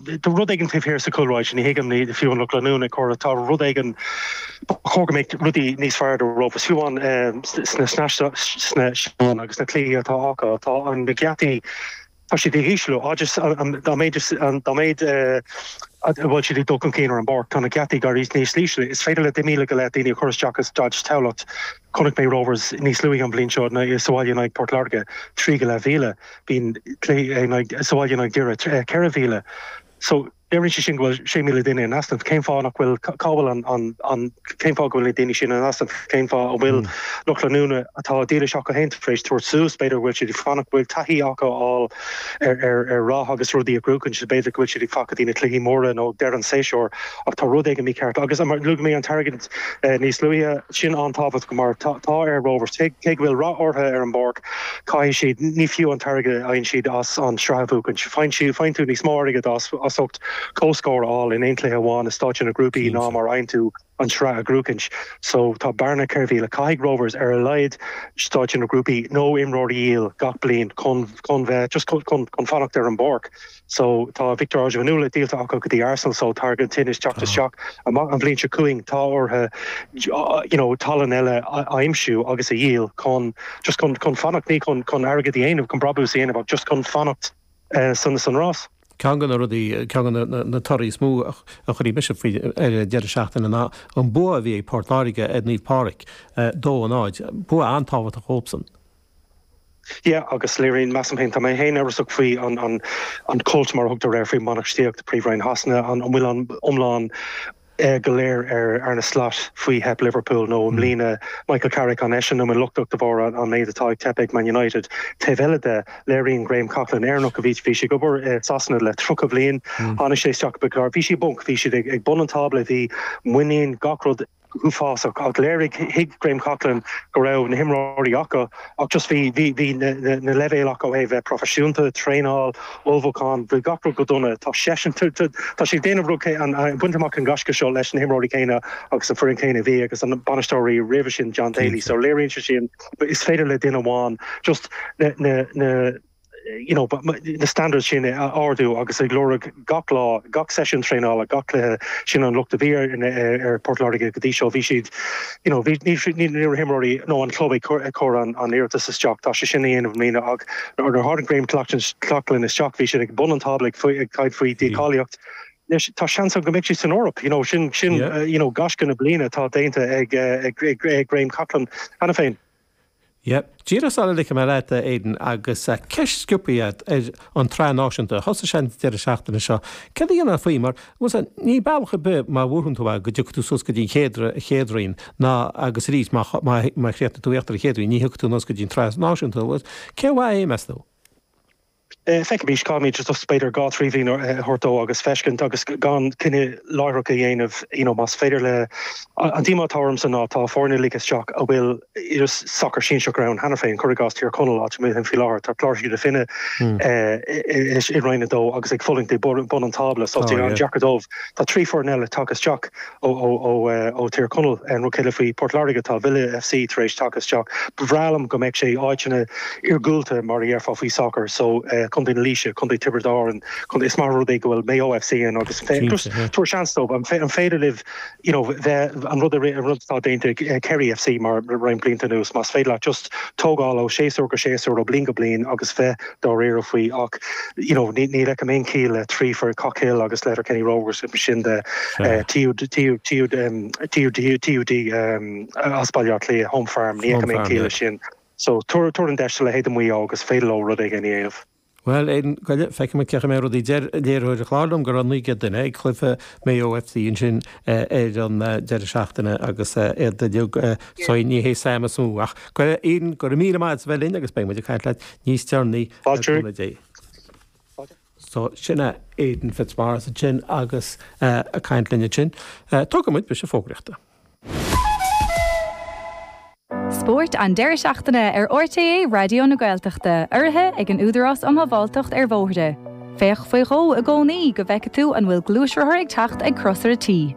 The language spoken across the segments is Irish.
Tá rud éigin taobh thiar sa chúlráid sin, ní thuigim, ní fiú an lucht leanúna ag comhrá, tá rud éigin, ba chóir go mbeadh rudaí níos fearr do rogha, is fiú an sna seastáin agus na cluichí atá acu, tá an na geataí, tá siad ag ísliú, dá mhéid dá mhéid a bhfuil siad ag dul chun cinn ar an bpáirc, tá na geataí ag éirí níos ísle, is féidir le deich míle go leith daoine a chur isteach i Staid Thamhlachta. Chonaic mé Rovers níos luaithe an bhliain seo sa bhaile in aghaidh Port Láirge, trí go leath mhíle. Bohs sa bhaile in aghaidh Dhoire, ceithre mhíle. So, léiríonn sé sin go bhfuil sé míle duine in easnamh. Cén fáth nach bhfuil, cá bhfuil an, cén fáth go bhfuil na daoine sin in easnamh? Cén fáth a bhfuil lucht leanúna atá dílis acu féin tar éis tabhairt suas, b'fhéidir go bhfuil siad ag fanacht, bhfuil siad ag taithí a fháil ar rath agus rudaí a bhuachaint, b'fhéidir go bhfuil siad ag fanacht go dtí na cluichí móra nó deireadh an séasúr, ach tá rud éigin mícheart. Agus luaigh mé an t-airgead. Níos luaithe, sin an-tábhachtach mar tá ar Rovers, cé go bhfuil rath orthu ar an bpáirc, caithfidh siad, ní fiú an t-airgead a fhaigheann siad as an tsraith a bhuachaint. Faigheann tú níos mó airgead as ucht comhscór a fháil in aon chluiche amháin i stáitse na grúpaí ná mar a fhaigheann tú an tsraith a bhuachaint. So tá bearna ceithre mhíle, caithfidh Rovers ar a laghad stáitse na grúpaí nó imreoirí a dhíol gach bliain chun bheith, just chun fanacht ar an bpáirc. so tá Victor Ozhianvuna díolta acu go dtí Arsenal so tá airgead ansin ag teacht isteach ach an bhliain seo chugainn tá orthu you know tallann eile a aimsiú agus a dhíol chun just chun chun fanacht ní chun chun airgead a dhéanamh chun brabús a dhéanamh ach just chun fanacht eh san san rás. Ceann de na rudaí, ceann de na na torthaí is mó a chuir ionadh ormsa faoin deireadh seachtaine ná an bua a bhí ag Port Láirge ar Naomh Pádraig eh dó a náid. Bua an-tábhachtach dhóibhsan. Yeah, agus léiríonn, measaim féin, tá mé féin amhrasach faoi an an cult mar a thugtar air faoi bhainistíocht Príomh-Roinn Shasana, an bhfuil an milleán go léir ar Arne Slot faoi theip Liverpool nó i mbliana Michael Carrick an eisean amháin lochtach de bharr an méid atá ag teip ag Man United. Taobh eile de, léiríonn Graham Coughlan, Éireannach a bhí bhí sé ag obair i Sasana le 30 bhliain, tháinig sé isteach nuair a bhí siad i bponc, bhí siad ag bun an tábla, bhí muinín gach rud uafásach ach léirigh, thuig Graham Coughlan go raibh na himreoirí acu ach just bhí bhí na leibhéil acu ó thaobh bheith proifisiúnta, traenáil, ullmhúchán, bhí gach rud go dona. Tá seisean, tá sé ag déanamh rud céanna, ag baint amach an gaisce seo leis na himreoirí céanna agus an foireann céanna a bhí ag an mbainisteoir roimhe sin John Daly so léiríonn sé sin is féidir le duine amháin just na na na standards sin a ardú agus ag lorg gach lá, gach seisiún traenála, gach cluiche. Sin an locht a bhí ar Port Láirge go dtí seo. Bhí siad, you know, bhí, ní raibh na himreoirí nó an club ag cur an iarratas isteach. Tá sé sin á dhéanamh i mbliana ach nuair a tháinig Graham Coughlan isteach bhí siad ag bun an tábla ag caint faoi dícháilíocht. Anois tá seans ann go mbeidh siad san Eoraip, you know, sin, sin, you know, gaisce na bliana atá déanta ag Graham Coughlan cheana féin. Yep. Díreach sula ligfidh mé leat, a Aidan, agus ceist sciobtha ort ar an tsraith náisiúnta, thosaigh sé an deireadh seachtaine seo, caidé a déarfá faoi, mar, bhuel sea, níl bealach ar bith má bhuann tú é go dtiocfaidh tú suas go dtí an chéad roinn, ná, agus arís, má chríochnaigh tú íochtar an chéad roinn, ní thiocfaidh tú anuas go dtí an tsraith náisiúnta, bhuel, cé mhaith é, meas tú? Feicimís caithfimid is b'fhéidir dhá trí bhliain a thabhairt dó agus feiscint agus gan cinneadh láithreach a dhéanamh you know más féidir le. An díomá atá ormsa ná tá foirne ligthe isteach a bhfuil sacar sinsearach ann cheana féin, cur i gcás Tír Chonaill áit a mbeidh faoi láthair tá Cláirsigh na Finne i Roinn a Dó agus ag fulaingt ag bun an tábla so tá sé an-deacair dóibh tá trí foireann eile tagtha isteach ó Thír Chonaill, an rud céanna faoi Port Láirge, tá Villa FC tar éis teacht isteach. Ba bhreá liom go mbeadh sé in áiteanna iargúlta, mar a déarfá faoi sacar, so Contae na Laoise, Contae Tiobraid Árann, Contae, is maith an rud é go bhfuil Mayo FC ann agus just tabhair seans dóibh, an féidir leo you know bheith, an rud a an rud atá déanta ag Kerry FC le roinnt blianta anuas, más féidir leat just tógáil ó séasúr go séasúr, ó bliain go bliain agus bheith. dáiríre faoi ach you know ní ní fheicim aon chiall le trí foireann Cockhill agus Letterkenny Rovers ansin TUD as Baile Átha Cliath home farm ní fheicim aon chiall leis sin so tabhair tabhair an deis do leithéid de Mhaigh Eo agus an féidir leo rud éigin a dhéanamh. Bhuel feicimis caidé mar a rachas rudaí deir léiritheoir an chláir liom go raibh 900 duine ag cluife Maigh Eo FC ansin ar an deireadh seachtaine agus iad ag liú sorry ní hé Sam is mó ach go raibh Aidan go raibh míle maith agat as a bheith linn agus beidh muid ag caint leat níos deireanaí ar Fáilteoirí? Thursday. So, sin é Aidan Fitzmaurice ansin agus ag caint linn ansin. Tógfaidh muid briseadh fógraíochta. Spórt an deireadh seachtaine ar RTÉ Raidió na Gaeltachta, urraithe ag an Údarás um Shábháilteacht ar Bhóithre. Féach faoi dhó i gcónaí go bhfeicfidh tú an bhfuil gluaisrothar ag teacht ag crosaire T.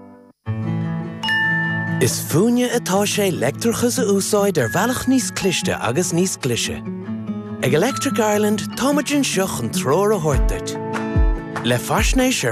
Is fúinne atá sé leictreachas a úsáid ar bhealach níos cliste agus níos glaise. Ag Electric Ireland, táimid anseo chun treoir a thabhairt duit. Le faisnéis ar.